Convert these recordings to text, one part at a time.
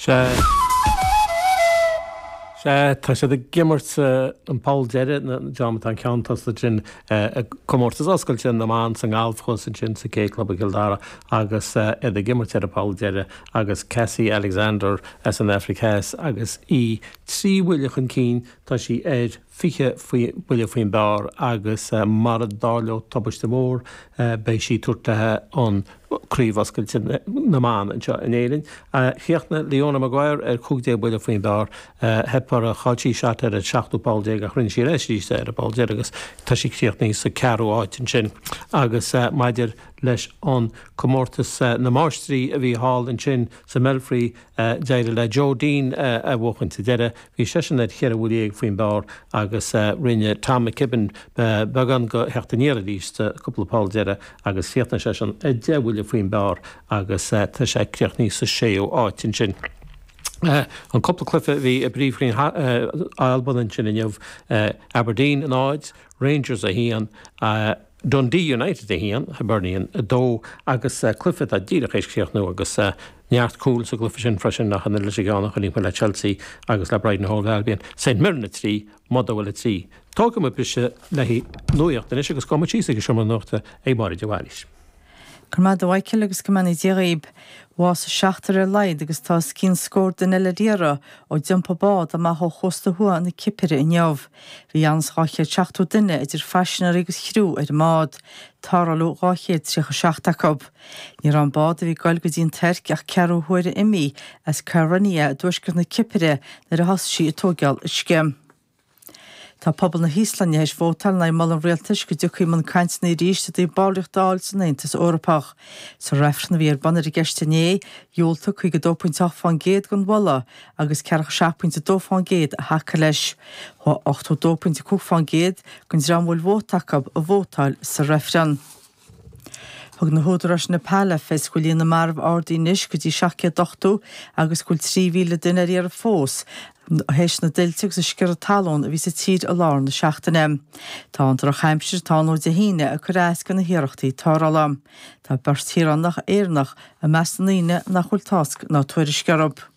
Sea, sea, tá siad ag imirt sa bpoll deiridh, nó an dream atá i gceann tosaigh ansin i gcomórtas oscailte na mban sa ngalf thuas ansin sa K Club i gCill Dara agus iad ag imirt ar an bpoll deiridh agus Cassie Alexander as an Afraic Theas agus í trí bhuille chun cinn, tá sí ar. 20 buille faoin bpar agus mara dtarlóidh tubaiste mhór beidh sí ag tabhairt léi an Craobh Oscailte na mBan anseo in Éirinn. Chríochnaigh Leona Maguire ar 15 buille faoin bpar. Theip uirthi, chaill sí seat ar an seachtú poll déag ach rinne sí leis arís é ar an bpoll deiridh agus tá sí críochnaithe sa ceathrú áit ansin. Agus maidir leis an Comórtas na Máistrí a bhí thall ansin sa mBelfry, a d'éirigh le Joe Dean a bhuachaint sa deireadh. Bhí seisean ar cheithre bhuille dhéag faoin bpar agus rinne Tom McKibbin beagán de theacht aniar arís sa cúpla poll deiridh agus chríochnaigh seisean a deich bhuille faoin bpar agus tá sé críochnaithe sa séú áit ansin. An cúpla cluiche a bhí i bpríomhroinn na hAlban ansin inniu, Aberdeen 0, Rangers 1, Dundee United 1, Hibernian 2 agus cluiche atá díreach théis críochnú agus neart cúil sa gcluiche sin freisin nach ionann leis an gceann a chonaic mé le Chelsea agus le Brighton and Hove Albion. St Mirren 3, Motherwell 3. Tógfaidh mé briseadh le nuacht anois agus gabhfaidh muid síos ag an seomra nuachta ag Máire de Bhailís. Go raibh maith agat a Mhichael agus go mbeannaí Dia dhaoib. Bhásaigh seachtar ar a laghad agus tá os cionn scór duine ar iarraidh ó d'iompaigh bád amach ó chósta thuaidh na Cipire inniu. Bhí os cionn 270 duine idir phaisinéirí agus chriú ar an mbád. Tarrtháladh 237 acu. Ní raibh an bád a bhí ag goil go dtí an Tuirc ach ceathrú huaire imithe as Kyrenia i dtuaisceart na Cipire nuair a thosaigh sí ag tóigeál uisce. Tá pobal na hÍoslainne théis vótáil in aghaidh mholadh an rialtais go dtiocfaí i mbun cainteanna arís i dtaobh ballraíocht a fháil san Aontas Eorpach. Sa reifreann a bhí ar bun ar an gceist inné, dhiúltaigh 52.8 faoin gcéad don mholadh agus ceathracha 7.2 faoin gcéad a thacaigh leis. Chuaigh 82.5 faoin gcéad den dream a bhfuil vóta acu ag vótáil sa reifreann. Thug na húdaráis i Neipeal le fios go bhfuil líon na marbh ardaithe anois go dtí 780 agus go bhfuil 3,000 duine ar iarraidh fós tar éis na dtuilte agus an sciorradh talún a bhí sa tír i lár na seachtaine. Tá an drochaimsir atá ann ó Dé hAoine ag cur as do na hiarrachtaí tarrthála. Tá beirt shaoránach Éireannach i measc na ndaoine nach bhfuil tásc ná tuairisc orthu.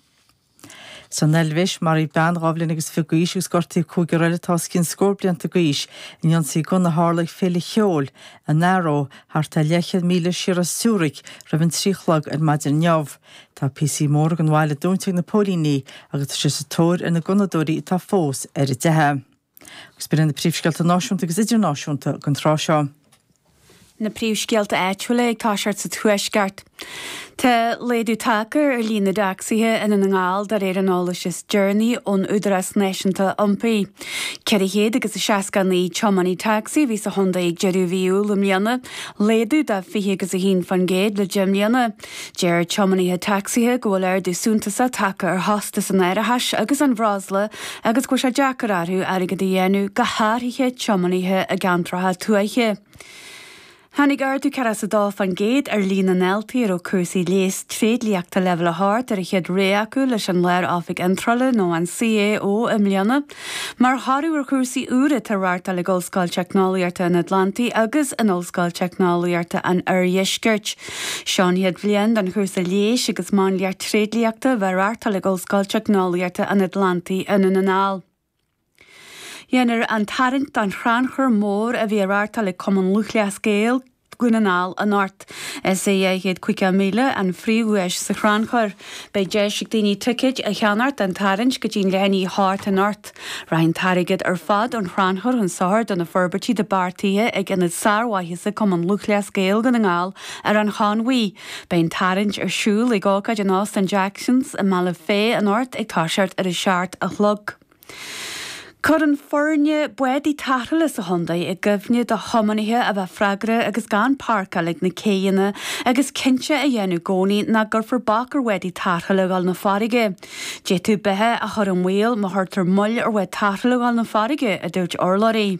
San Eilvéis, maraíodh bean dhá bhliain agus fiche d'aois agus gortaíodh cúigear eile atá os cionn scór blianta d'aois in ionsaí gunna a tharla ag féile cheoil in Aarau thart ar leathchéad míle siar as Zürich roimh an trí a chlog ar maidin inniu. Tá píosaí móra den bhaile dúnta ag na póilíní agus tá siad sa tóir ar na gunnadóirí atá fós ar an dteitheadh. Agus b'iad sin na príomhscéalta náisiúnta agus idirnáisiúnta don tráth seo. na príomhscéalta áitiúla ag toiseacht sa Tuaisceart. Tá laghdú tagtha ar líon na dtacsaithe i nDún na nGall de réir an eolais is deireanaí ón Údarás Náisiúnta Iompair. 469 tiománaí tacsaí a bhí sa chontae ag deireadh mhí Iúil i mbliana, laghdú de 20 agus 1 faoin gcéad le deich mbliana. Deir tiománaithe tacsaithe go bhfuil ardú suntasach tagtha ar chostas an árachais agus an bhreosla agus go bhfuil sé deacair orthu airgead a dhéanamh, go háirithe tiománaithe i gceantracha tuaithe. Tháinig ardú 40 is a dó fán gcéad ar líon na ndaltaí a raibh cúrsaí leighis tréidliachta Leibhéal 8 ar an chéad rogha acu leis an Lár-Oifig Iontrála nó an CAO i mbliana. Mar thoradh ar chúrsaí úra atá á reáchtáil ag Ollscoil Teicneolaíochta an Atlantaigh agus in Ollscoil Teicneolaíochta an Oirdheiscirt. Seo an chéad bhliain don chúrsa Leighis agus Máinliacht Tréidliachta a bheith á reáchtáil ag Ollscoil Teicneolaíochta an Atlantaigh i nDún na nGall. Déanfar an tarraingt don chrannchur mór a bhí á reáchtáil ag Cumann Lúthchleas Gael, Dhún na nGall anocht. Is 250 míle an phríomhdhuais sa chrannchur. Beidh deis ag daoine ticéid a cheannacht don tarraingt go dtí leath i ndiaidh a hocht anocht. Rachaidh an t-airgead ar fad ón chrannchur chun sochair do na forbairtí atá beartaithe ag Ionad Sármhaitheasa Cumann Lúthchleas Gael Dhún na nGall ar an Chonmhaigh. Beidh an tarraingt ar siúl ag ócáid in Óstán Jacksons i mBealach Féich anocht ag toiseacht ar a seacht a chlog. Cuireann foirne bádaí tarrthála sa chontae i gcuimhne do thiománaithe a bheith freagrach agus gan páirceáil ag na céidheanna agus cinnte a dhéanamh i gcónaí nach gcuirfear bac ar bhádaí tarrthála a ghabháil 'na farraige. D'fhéadfadh beatha a chur i mbaol má chuirtear moill ar bhád tarrthála a ghabháil 'na farraige, a dúirt urlabhraí.